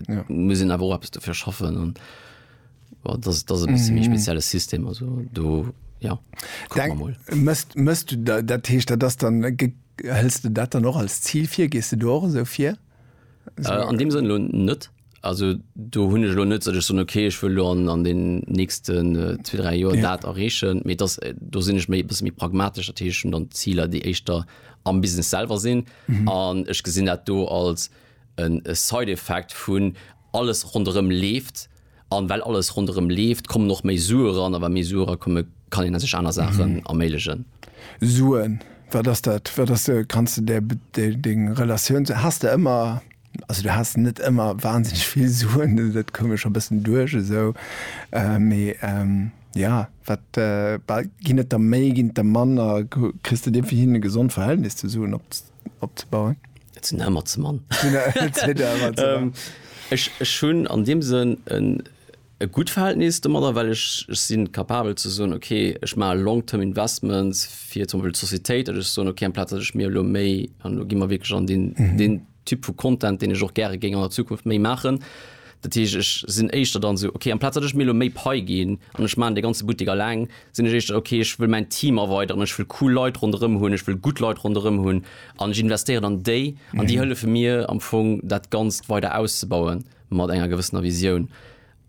ja. muss en awer eppes dofir schaffen an dat dat e bis méi mhm. spezielle System also do ja mëst mëst du dat dat heescht dat das dann hëlls du dat dann noch als Ziel fir gest du do so fir äh, an dem sinn lo net also du hunne lo net sech son okay ich will an an den nächsten äh, zwei drei Joer ja. dat errechen mit das äh, do sinn ich méi bis mi pragmatischer Teeschen dann Zieler déi echtter am business selber sinn an mhm. ich gesinn dat do als En side effect vun alles ronderëm leeft an well alles ronderëm leeft kommen och méi Sue ran a wa méi Sue era kommen kann een sech aner Saachen erméiglegen. Suen, wat ass dat? Wat ass de, kanns de där deng Relatioun ze, has de ëmmer, also du has net ëmmer wahnsinneg vill Suen, dat koum mir scho bëssen duerch esou, mee jo wat, ginn et der méi, ginn et der manner, kriss de dee fir hin e gesond Verhältnis zu Suen op, opzebauen. Et sinn Hämmer ze man. Ech hunn an deem Sënn en e gutt Verhältnis domadder, well ech ech si capabel ze soen, okay, ech maache long term investments fir zum Beispill d'Societéit, datt ech soen, okay, amplaz datt ech mir elo méi, an elo gi mer wierklech an deen Typ vu Content, deen ech och gäre géing an der Zukunft méi maachen, Dat heescht, ech sinn éischter dann esou, okay, amplaz datt ech mir elo méi Pai ginn an ech maachen dee ganze Buttek alleng, sinn ech éischter, okay, ech wëll mäin Team erweideren, ech wëll cool Leit ronderëm hunn, ech wëll gutt Leit ronderëm hunn an ech investéieren an déi an déi hëllefe mir am Fong, dat Ganzt weider auszebauen mat enger gewëssener Visioun.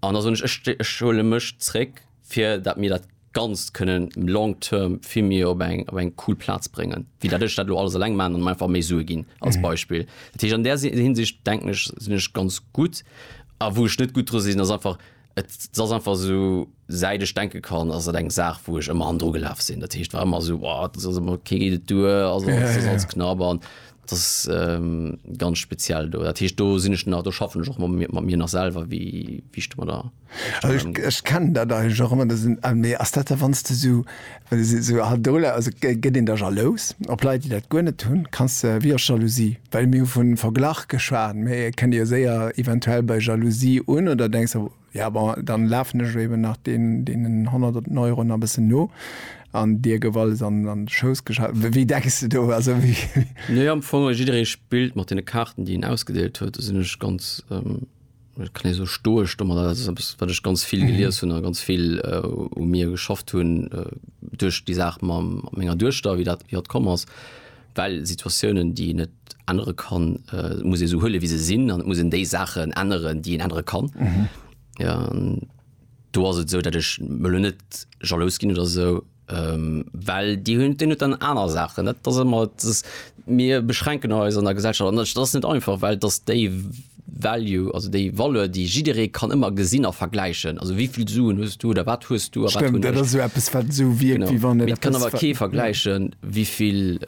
An da soen ech, ech huele mech zréck. fir dat mir dat Ganzt kënnen long term vill méi op eng, op eng cool Plaz bréngen, wéi dat ech dat elo alles eleng maachen an einfach méi Sue ginn als Beispill. Dat heescht, an där Hinsicht denken ech, sinn ech ganz gutt. A wou ech net gutt dru sinn, ass einfach, et ass einfach esou, säit ech denke kann, ass et eng Saach, wou ech ëmmer hannendru gelaf sinn. Dat heescht, war ëmmer esou, oh, et ass alles ëmmer, kee geet et duer, alles, alles ass alles knapp an et ass ganz speziell do. Dat heescht, do sinn ech nach, do schaffen ech och mat mir, mat mir nach selwer, wéi, wéi ech domadder. Ech kennen dat eigentlech och ëmmer. Mee ass dat da wann s de esou, well se esou ha dola, also gëtt een da jalous op Leit, déi dat guer net hunn? Kanns de, wéi ass Jalousie? Well mir hu vun Verglach geschwat, mee et kënnt jo séier eventuell bei Jalousie un. Oder denks de, jo bon, dann lafen ech eben nach deen, deenen honnerten Euro nach e bëssen no an dir gouf alles an an de Schouss geschaf? Wéi, wéi denks de do? Also wéi. Nee, am Fong, jidderee spillt mat deene Kaarten, déi en ausgedeelt huet. Do sinn ech ganz. Et kann ee sou stoesch domadder, dat ass eppes, wat ech ganz vill gelies hunn a ganz vill u mir geschafft hunn duerch déi Saach mam menger Duechter, wéi dat, wéi dat komm ass. Well Situatiounen, déi een net ännere kann, muss ee sou huele wéi se sinn an et muss een déi Saachen änneren, déi een ännere kann. An do ass et esou, datt ech elo net jalous ginn oder esou. Well déi hunn, deen huet dann aner Saachen. Dat ass ëmmer, dat ass, mir beschränken eis an der Gesellschaft an dat ass net einfach, well dass déi Value, also déi Valeur, déi jidderee kann ëmmer gesinn a vergläichen, also wéi vill Suen hues du oder wat hues du a wat hunn ech. Stëmmt, dat ass esou eppes, wat esou wierkt, wéi wann et eppes. Mee et kann awer kee vergläichen, wéi vill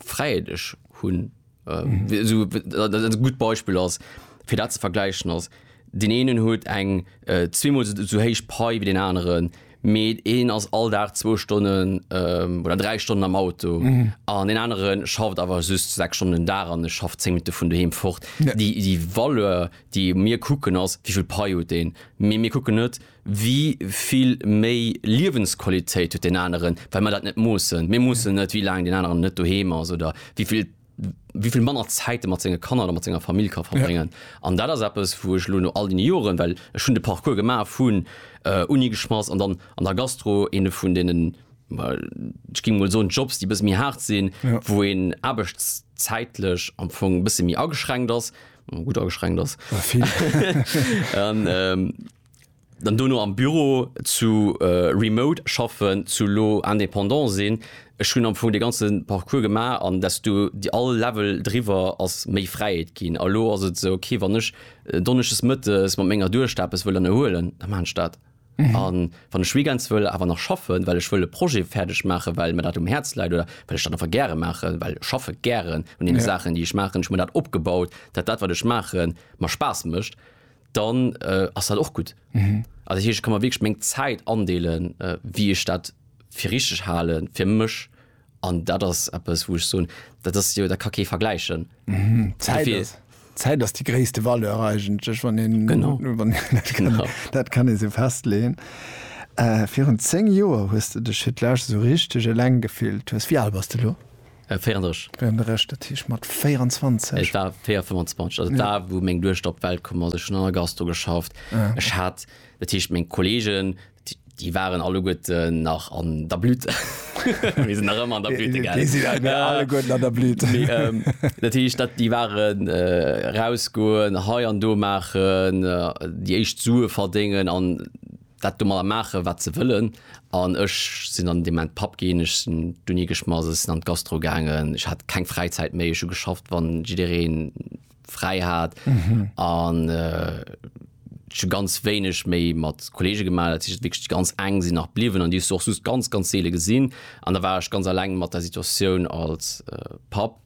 Fräiheet ech hunn. äh, so, äh, gut Beispiel ass fir dat ze vergleichen ass den enen huet eng äh, zweimal so, so héich Pai wie den anderen Mee een ass all Dag 2 Stonnen ähm, oder 3 Stonnen am Auto mhm. an den anderen schafft awer just 6 Stonnen da an schafft 10 Minuten vun duheem fort. Ja. Déi, déi Valeur, déi mir kucken ass, wievill Paiot den. Mee mir kucken net, Wéi vill méi Liewensqualitéit huet deen aneren, well mer dat net moossen? Mir moossen net, wéi laang deen aneren net doheem ass oder wéi vill, wéi vill manner Zäit e mat senge Kanner oder mat senger Famill ka verbréngen. An dat ass eppes, wou ech elo no all deene Joren, well ech hunn de Parcours gemaach vun Uni geschmass an dann an der Gastro, eene vun deenen, ech géing emol soen, Jobs, déi e bësse méi haart sinn, wou een aarbechtszäitlech am Fong e bësse méi ageschränkt ass, gutt ageschränkt ass. Dann dono am Büro zu remote schaffen, zu elo indépendant sinn. Ech hunn am Fong dee ganze Parcours gemaach an desto déi all Level driwwer ass méi Fräiheet ginn. A elo ass et esou, okay, wann ech donneschdes mëttes mat menger Duechter eppes wëll ënnerhuelen, da maachen ech dat. A wann ech weekends wëll awer nach schaffen, well ech wëll e Projet fäerdeg maachen, well mir dat um Häerz läit oder well ech dat einfach gäre maachen, well ech schaffe gären un deene Saachen, déi ech maachen, ech hunn mir dat opgebaut, dat dat, wat ech maachen, mer Spaass mécht, dann äh, ass dat och gut. Mhm. Also hier, ich kann man wirklich meng Zeit andeelen, äh, wie ich dat fir richtig halen fir mech an dat ass Apps wo ich so dat ass jo der Kacke vergleichen. Mhm. Zeit, ist, Zeit ass die gréste Valeur eigentlech wann den genau. Wann, dat, kann, genau. dat kann e se festlehen. Äh, virun 10 Joer hues du dech fir d'Lech so richteg eleng gefillt hues. Wie al bass du lo? 34. Wéi an der Recht, dat heescht mat 24? Et war 4, 25, also d'A wou meng Duechter op d'Welt komm ass, ech hunn an der Gastro geschafft. Ech hat, dat heescht meng Kollegen, déi waren alleguerten nach an der Blüte, mir sinn nach ëmmer an der Blüte, gell? Déi sinn alleguerten an der Blüte. Dat heescht, dat déi waren erausgoen, hei an do maachen, déi éischt Sue verdéngen an. dat domadder maachen, wat se wëllen. An ech sinn dann an deem Moment Papp ginn, ech sinn d'Uni geschmass, ech sinn an d'Gastro gaangen, ech hat keng Fräizäit méi, ech hu geschafft, wann jiddereen fräi hat. An ech hu ganz wéineg méi mat Kolleege gemaach, dat heescht wierklech déi ganz eng sinn nach bliwwen an déi hues du och soss ganz, ganz seele gesinn. An da war ech ganz eleng mat der Situatioun als Papp.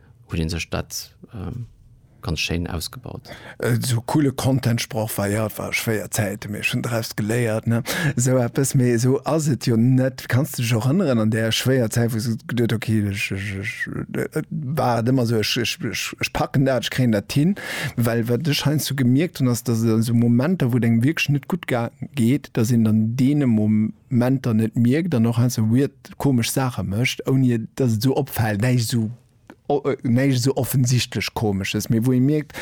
huet een sech dat ganz schéin ausgebaut. Esou coole Content Sproch war, jo et war schwéier Zäiten, mee ech hunn draus geléiert, ne esou eppes. Mee esou ass et jo net. Kanns de dech och erënneren an där schwéier Zäit, wou s de geduet, ok ech, ech, ech, et war et ëmmer esou, ech, ech, ech, ech packen dat, ech kréien dat hin. Well wat ech heiansdo gemierkt hunn, ass, datt et an esou Momenter, wou et engem wierklech net gutt geet, datt een dann deene Mo, Menter net mierkt an och heiansdo esou weird, komesch Saache mécht, ouni dass et esou opfält, näischt esou, näischt esou offensichtlech Komesches, mee wou ee mierkt,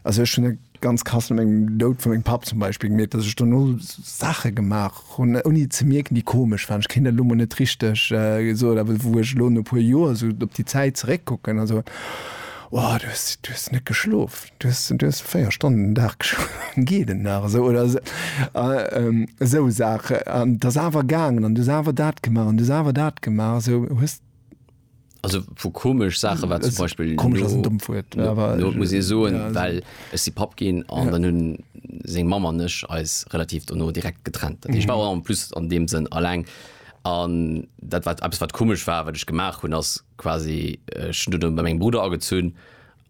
also ech hunn et ganz krass no mengem Doud vu mengem Papp zum Beispill gemierkt, dass ech dono Saache gemaach hunn, ouni ze mierken, déi komesch waren. Ech kéint dat elo mol net richteg soen, awer wou ech elo no e puer Joer esou op déi Zäit zeréckkucken a soen, Wow, du hues net geschlof! Du hues 4 Stonnen den Dag geschlof, geet et nach esou? Oder esou Saachen. An et ass awer gaangen an du hues awer dat gemaach an du hues awer dat gemaach. Esou hues. Also vu komesch Saache war zum Beispill. Komesch ass en dommt Wuert, mä awer. Lo muss ee soen, well ech si Papp ginn an dann hunn seng Mamm an ech eis relativ dono direkt getrennt. Dat heescht, ech war en plus an deem Sënn alleng an dat wat eppes wat komesch war, wat ech gemaach hunn, ass quasi ech hunn dunn bei mengem Brudder agezunn.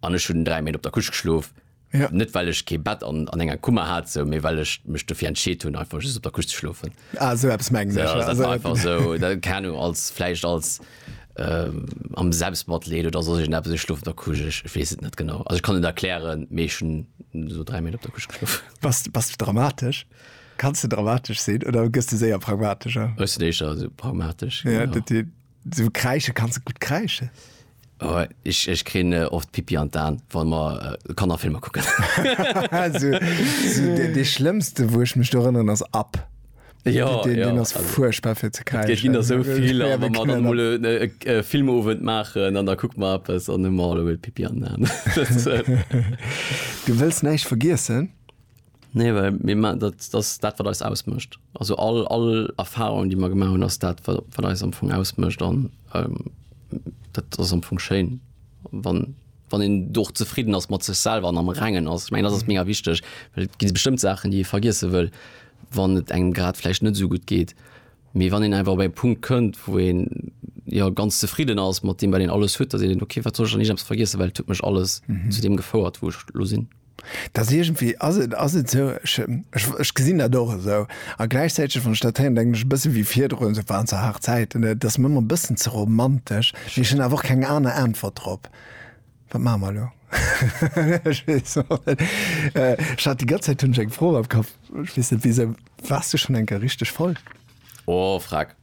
an ech hunn 3 Méint op der Couche geschlof. Ja. Net well ech kee Bett an, an enger Kummer hat, sou, mee well ech mech dofir entscheet hunn, einfach just op der Couche ze schlofen. Ah, sou eppes mengen ech. Ja, also, einfach sou, dat, keine Ahnung, als, vläicht als ähm, am Selbstmatleed oder soss irgend eppes, ech schlof op der Couche, ech, ech weess et net genau. Also ech kann et erklären, mee ech hunn sou 3 Méint op der Couche geschlof. Bass, bass du dramatesch? Kanns du dramatesch sinn oder gëss du séier pragmatescher? Ech sinn éischer sou pragmatesch. Ja, genau. dat, So kreische kannst du gut kreische. Oh, ich, ich kenne äh, oft Pipi an Dan, wann man äh, kann nach Filme gucken. also, so, der, der schlimmste, wo ich mich erinnern, ist ab. Ja, den, ja, den ist also, furchtbar für zu kreischen. Ich ging so viel, ja, wenn man dann mal einen äh, äh, Filmabend machen, dann da guckt man etwas und dann mal Pipi an Dan. du willst nicht vergessen? Nee, well mir ma dat, dat ass dat, wat eis ausmécht. Also all, all Erfahrung, déi mer gemaach hunn, ass dat, wat, wat eis am Fong ausmécht. An ähm, dat ass am Fong schéin, wann, wann een do och zefridden ass mat sech selwer an am Rengen ass. Ech mengen, dat ass mega wichteg, well et gi bestëmmt Saachen, déi ee vergiesse wëll, wann et engem grad vläicht net esou gutt geet. Mee wann een einfach op eng Punkt kënnt, wou een jo ganz zefridden ass mat deem, wat een alles huet, da seet een, okay, wat soll ech dann liicht eppes vergiessen, well et huet mech alles zu deem gefouert, wou ech lo sinn. Dass iergendwéi ass et, ass et esou, ech, ech, ech gesinn dat och esou. A gläichzäiteg, wann ech dat héieren, denken ech e bësse wéi virdrun, esou waren zwar haart Zäiten, et ass mir ëmmer e bëssen ze romantesch. Mee ech hunn awer och keng aner Äntwert drop. Wat maache mer elo? Ech weess och net. Ech hat déi ganz Zäit hunn ech eng Fro am Kapp, ech weess net wisou. Waars du schonn eng Kéier richteg voll? Oh, frag.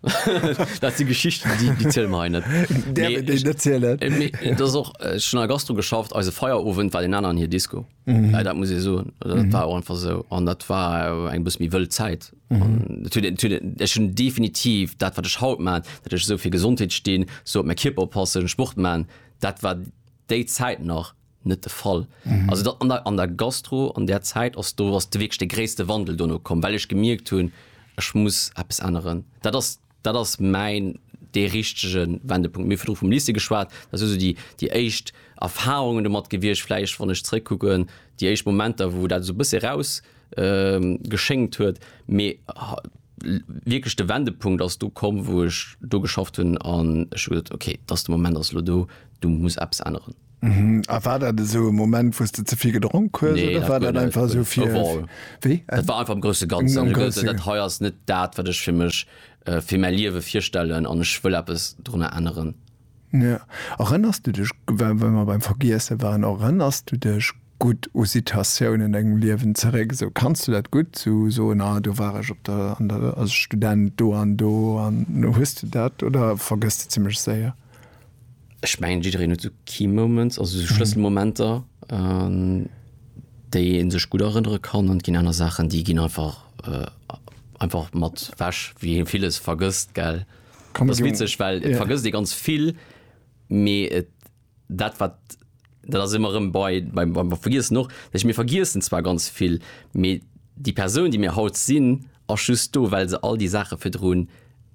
dat si Geschichten, déi, déi ziel mer hei net. Der nee, ich, net zielen. Äh, dat och äh, schon a Gastro geschafft, eise Feierowend war den aneren hier Disco. Mhm. Ja, dat muss e soen. Dat mhm. war einfach so. an dat war eng bis mi wëll Zäit. Mhm. schon definitiv dat wat ech haut man, dat ech so fir Gesundheet steen, so op me Kipper passen, Sport man, dat war déi Zäit nach net de Fall. Also dat an der, an der Gastro, an där Zäit ass do, ass de wierklech de gréisste Wandel dono komm, well ech gemierkt hunn, ech muss eppes änneren. Dat ass, dat ass mäin, dee richtege Wendepunkt. Mir hu virdru vum Lycée geschwat, dat si sou déi, déi éischt Erfarungen domat gewiescht, vläicht, wann ech zeréckkucken, déi éischt Momenter, wou dat esou e bësse eraus geschéngt huet. Mee wierklech de Wendepunkt ass do komm, wou ech do geschafft hunn an ech hu gesot, okay, dat ass de Moment, ass elo do, do muss eppes änneren. Mhm. A war dat esou e Moment, wou s de ze vill gedronk hues nee, oder war dat einfach esou fir wéi? Dat war einfach am grouse Ganzen. Am grouse dat hei ass net dat, wat ech fir mech äh, fir mäi Liewe virstellen an ech wëll eppes drunner änneren. Ja. Erënners du dech, well mer beim Vergiesse waren, erënners du dech gutt u Situatiounen an dengem Liewen zeréck? Esou kanns du dat gutt so soen, ah, do war ech op der, an der, als Student do an do an hues du dat oder vergëss de zimmlech séier? Ech mengen jiddereen huet sou key moments, also sou Schlësselmomenter an déi ee sech gutt erënnere kann an et ginn aner Saachen déi ginn einfach einfach mat weg wéi ee villes vergësst gell. Ass witzeg well et vergësst ee ganz vill mee et dat wat dat ass ëmmer rëm bei, bei, bei mer vergiessen och, dat heescht mir vergiessen zwar ganz vill, mee déi Persoun déi mir haut sinn ass just do well se all déi Saache virdrun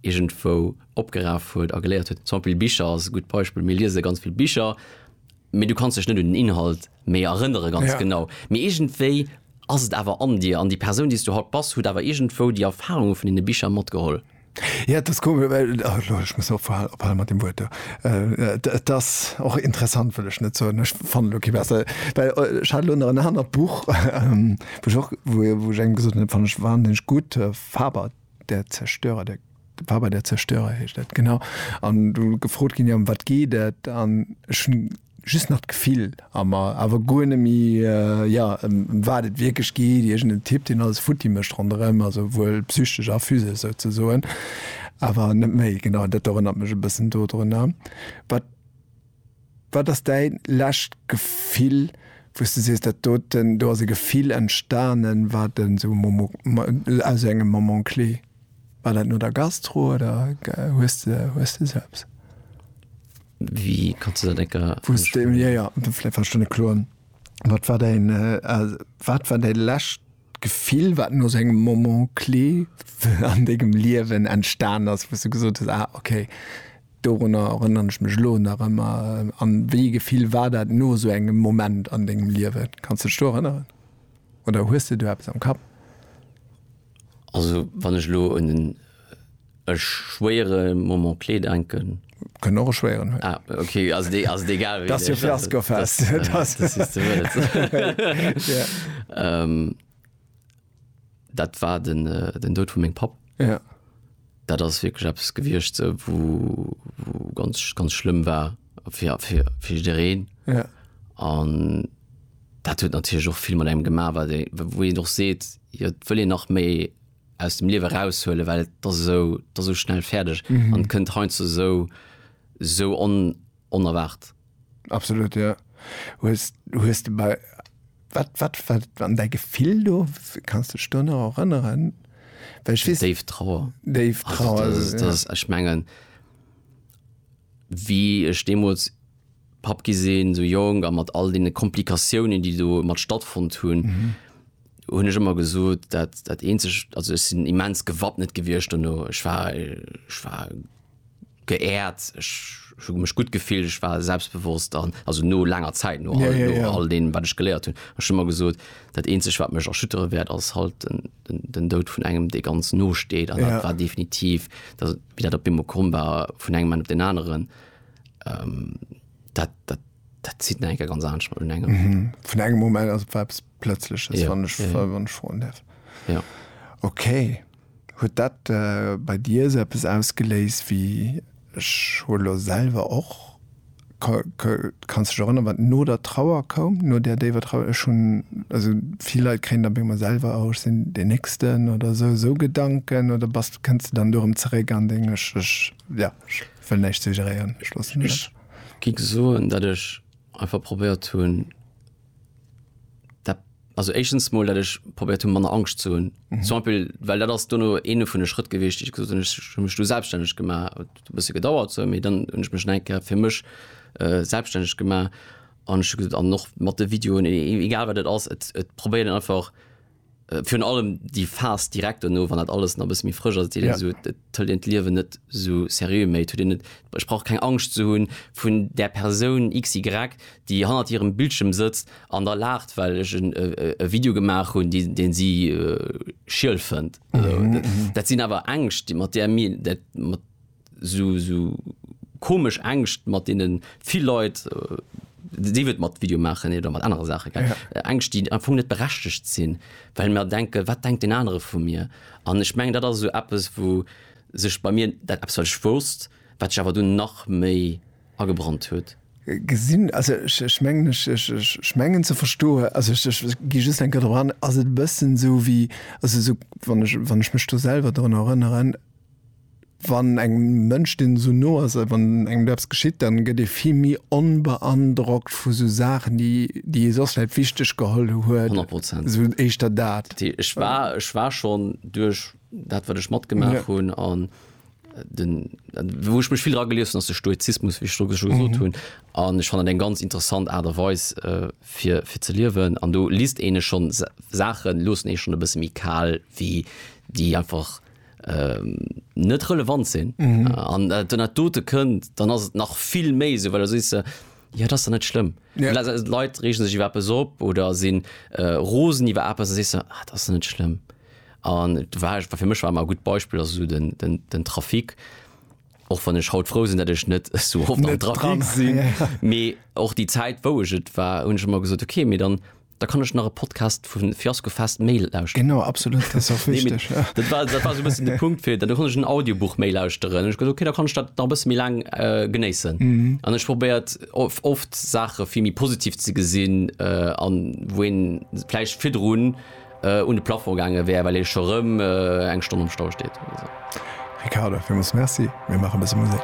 iergendwou opgeraf huet a geléiert huet. Zum Beispill Bicher ass e gutt Beispill, mir liese ganz vill Bicher, mee du kanns dech net un den Inhalt méi erënnere ganz ja. genau, mee iergendwéi ass et awer an dir an déi Persoun déi s du haut bass huet awer iergendwou déi Erfarunge vun deene Bicher matgeholl. Ja, et ass komesch, well, lo, ech muss ophal, ophale mat deem Wuert do. Et ass och interessant, wëll ech net soen, ech fanne lo kee bessere, well ech hat elo nach en anert Buch, wou ech och, wou, wou ech engem gesot hunn, dat fannen ech wahnsinneg gutt, Faber, der Zerstörer, der, Faber, der Zerstörer heescht dat, genau. An do gefrot ginn, jo ëm wat geet dat? An ech hunn. just nach d'Gefill a mer, awer guer net méi, jo, ëm wat et wierklech geet, iergendeen Typ, deen alles futti mécht ronderëm, also wuel psychesch a physesch souzesoen, awer net méi. Genau, dat erënnert mech e bëssen dodrunner. Wat, wat ass däi lescht Gefill, wou s de sees, dat doten, do ass e Gefill entstanen, wat en esou Momo, aus esou engem Moment clé, war dat no der Gastro oder hues de, hues de esou eppes? Wéi kanns du dat eng Kéier. Wou s de, jo, jo, vläicht war ech do net kloer. Wat war däin, wat war däi lescht Gefill, wat no esou engem Moment clé an dengem Liewen entstan ass, wou s du gesot hues, ah, okay, dorunner erënneren ech mech elo nach ëmmer? An wéi ee Gefill war dat no esou engem Moment an dengem Liewen? Kanns du dech do erënneren oder hues de do eppes am Kapp? Also wann ech elo un en e schwéiere Moment clé denken. Kënnt och e schwéieren hunn. Ah okay, ass et ass et egal wéi. Dat ass jo Fiaskofest. Dat war den den Doud vu mengem Papp. Jo. Dat ass wierklech eppes gewiescht sou wou wou ganz ganz schlëmm war fir fir fir jiddereen. Jo. An. Dat huet natierlech och vill mat engem gemaach, wat ee, wou een och seet, jo et wëll een nach méi aus dem Liewe eraushuelen, well et ass esou, et ass esou schnell fäerdeg an et kënnt heiansdo esou, esou onerwaart. Absolut, jo. Hues, hues de bei, wat, wat war dann däi Gefill do? Kanns de dech do nach erënneren? Well ech weess. Déif Trauer. Déif Trauer. Also dat ass, dat ass, ech mengen, wéi ech deemools. Papp gi sinn, esou jonk a mat all deene Komplikatiounen, déi domat stattfonnt hunn, hunn ech ëmmer gesot, dat, dat eenzegt, also ech sinn immens gewappnet gewiescht dono. Ech war, ech war geehrt, ech hu mech gutt gefillt, ech war selbstbewosst an, also no laanger Zäit, no all, no all deem, wat ech geléiert hunn. Ech hu ëmmer gesot, dat eenzegt, wat mech erschüttere wäert, ass halt den, den, den Doud vun engem, dee ganz no steet. An dat war definitiv, wéi dat op eemol komm war vun engem Moment op deen aneren. ähm, dat, dat, dat zit enke ganz an un engem mhm. vun engem Moment as webs plötzlich ja, wann ich, ja. wann ich froen darf ja. okay huet dat äh, bei dir se es ausgeléist wie Scholo selber och kannst du erinnern wat no der Trauer kom no der David Trauer schon also viel Leute kennen dann immer selber auch sind den nächsten oder so so Gedanken oder was kannst du dann darum zurück an Englisch ja Wëll näischt suggeréieren. Ech loossen Ech dat. gi soen, datt ech einfach probéiert hunn, dat, also éischtens mol, datt ech probéiert hunn, manner Angscht ze hunn. Zum Beispill, well dat ass duerno eene vun de Schrëtt gewiescht, déi ech gesot hunn, ech hu mech du selbststänneg gemaach. Et huet e bësse gedauert esou, mee dann hunn ech mech nach eng Kéier fir mech selbststänneg gemaach an ech hu gesot, an och mat de Videoen, egal wat et ass, et, et probéieren einfach, Äh, virun allem déi Phas direkt no, wann dat alles na bis méi frësch ass, ja. so, tëll den d'Liewen net so seriö méi tu net sprach keng Angst zu hunn vun der Persoun XY, déi hannert hirem Bildschirm sëtzt an der lacht, well ech en äh, äh, Video gemaach hunn, deen deen si äh, schiel fënnt. Mhm, mhm. Dat sinn awer Ängscht, déi mat der mir dat mat sou komesch Ängscht mat deene vill Leit, sief et mat Video maachen oder mat anere Saache, Ängscht, déi am Fong net berechtegt sinn, well mer denken, wat denkt deen anere vu mir? An ech mengen, dat ass esou eppes, wou sech bei mir dat eppes, wat ech wousst, wat sech awer dunn nach méi agebrannt huet. Gesinn, also ech mengen, ech mengen ze verstoen, also ech gi just eng Kéier drop an, ass et e bëssen esou wéi, also esou, wann ech mech do selwer drun erënneren, Wann engem Mënsch, deen esou no ass, wann engem do eppes geschitt, dann gëtt ee vill méi onbeandrockt vu sou Saachen, déi déi ee soss vläit wichteg geholl huet. Honnert Prozent. Esou éischter dat. T, Ech war, ech war schonn duerch dat, wat ech matgemaach hunn, an den, wou ech mech vill dra gelies hunn, ass de Stoizismus, wéi ech do scho gesot hunn. An ech fannen dat eng ganz interessant Aart a Weis, fir, fir ze liewen. An do liest een e schonn Sa, Saachen loossen ee schonn e bësse méi kal wéi déi einfach. net relevant sinn an mm. den net dote kënnt, dann ass et nach vill méi se, well si se ja dat net schlimm. Ja. Leiit regen sech iwwer be op oder sinn äh, Rosen iwwer Apps si se ah, dat net schlimm. An war fir mech war gut Beispiel as so den, den, den Trafik och wann ech haut froh sinn, dat ech net so hoffen Trafik sinn. Mee och die Zäit wouget war hun schon mal gesot okay, mir dann Da kann ech nach e Podcast vun Fiasko Fest Mail lauschteren. Genau, absolut, dat ass och Nee, wichteg. Ja. Dat war, dat war so e bëssen de Punkt fir, da konnt ech en Audiobuch méi lauschteren. Ech gesot, okay, da kann ech dat nach e bësse méi laang äh, genéissen. Mhm. An ech probéiert of, oft Saache vill méi positiv ze gesinn, äh, an wou een vläicht virdrun äh, un de Plafond gaange wär, well ee scho rëm äh, eng Stonn am Stau steet oder sou. Ricardo, villmools Merci. Mir maache e bësse Musek.